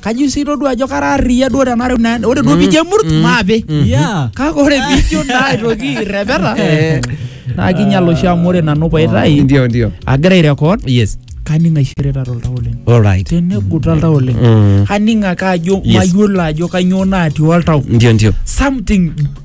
kajo sii todua ajo kara arriyia duo tenareu naa ore duo pijo emurt maape Yeah. kake ore pijo naa aitoki irrepeta Eh. naa kinyal oshi amu ore nanu paitai Ndio, ndio. agira airekod Yes. kaning aishirita toltau oleng All right. tenegut oltau oleng Mm. kaning ake ajo Yes. mayiolo ajo kanyoo natii oltau Ndio, ndio. something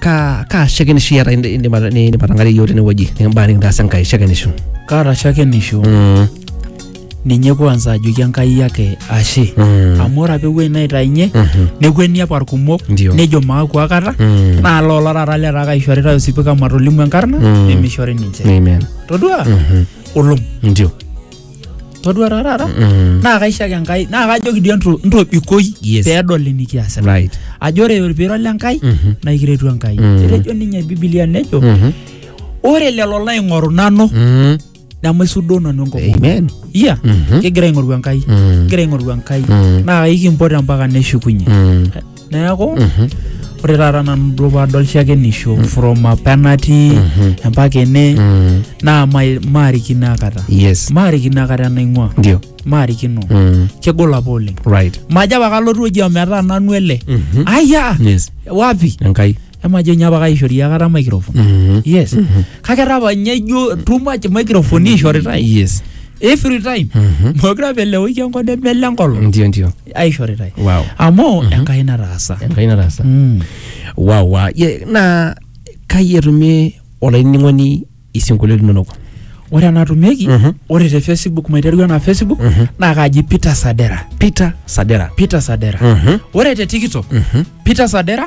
Ka ka shakenisho iyata indi- indim ata- ni- indim atang'arie iyiook tenewueji nikimbaa nikitaasa Enkai shakenisho. kaata shakenisho Mm. ninye kwanza ajoki enkai yake ashe Mm. amu ore apa ewuei naitainye Mhm. nekueni apa irkumok Ndio. nejo maaku akata Mm. naa loola taata letaa kaishoritae osipika matolimu enkarna Mm. nemishori ninche Amen. todua Mhm. olom Ndio. todua taa taata Mm. naa kaishaki enkai naa kajoki dii entro- ntobikoi Yes. peedol enikiasita right ajo ore piirol enkai Mhm. naa ikiretu enkai Mm. etejo ninye bibilia nejo Mhm. ore lelo laing'oru nanu Mm. nemaisudoo nanu enkop amen iya Mhm. kigira aing'oru enkai Mm. kigira aing'oru enkai Mm. naa ikimpot mpaka neshukunye Mm. neeku ore taata nanu duo paadol shakenisho from apa natii mpaka ene naa mai- maarikino akata yes maarikino akata enaing'ua ndio maarikino mm. kegol apa oleng right majo apa kalotu oji ometaa nanu ele Mhm. aya yes wapi enkai emajo nye apa kaishori akata microphone Mhm. yes kake etaa apa nye ijo too much microphone ishoritae yes every time Mhm. mokure apa elewoi enkop nemele enkolong ndio ndio aishoritae Wow. amu enkai nataasa enkai nataasa Mm. wawa ye naa kai etumie olainining'oni isinkolio linonok ore enatumieki Mhm. ore te facebook maiteru ena facebook naa kaji peter sadera peter sadera peter sadera Mhm. ore te tiktok peter sadera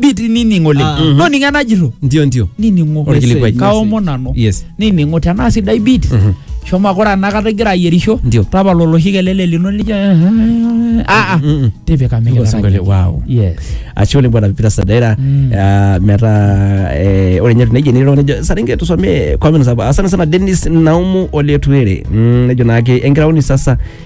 biti nining oleng Ah. no ninye najito ndio ndio nining'o Orkilikuai. kaomo nanu yes nining'o tenaa sidai bit Mhm. shomo ake ore enakata igira ayierisho Ndio. tapala oloshi kelele lino lijo aa Mm-mm. tipika Ndio, mikitara singole, yie. wow. yes ashe oleng bwana pipita sadaira Mm. Ah, metaa eh, ore nye tuneji nilo nejo saringe tusomee comments hapa asante sana Dennis Naumu Oletuere Mm, nejo naake enkiraoni sasa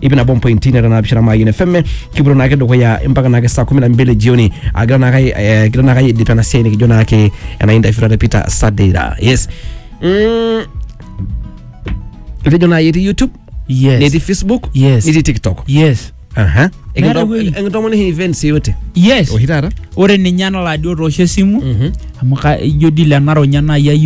ip nabo mpointi nera naapishana maayien fm kipuoto naake dukuya mpaka naake saa kumi na mbili jioni agira naake eh, kigira naake aidip ena siai nikijo naake ena interview naata Peter Sadira yes mm, etejo naai etii YouTube Yes. netii Facebook Yes. netii TikTok yes aha Meeta ewueji. enkitomoni hii events yote yes oshi taata ore ninye enalaadi otoosho esimu Mhm. amu ka- ijo dile enaronya naayi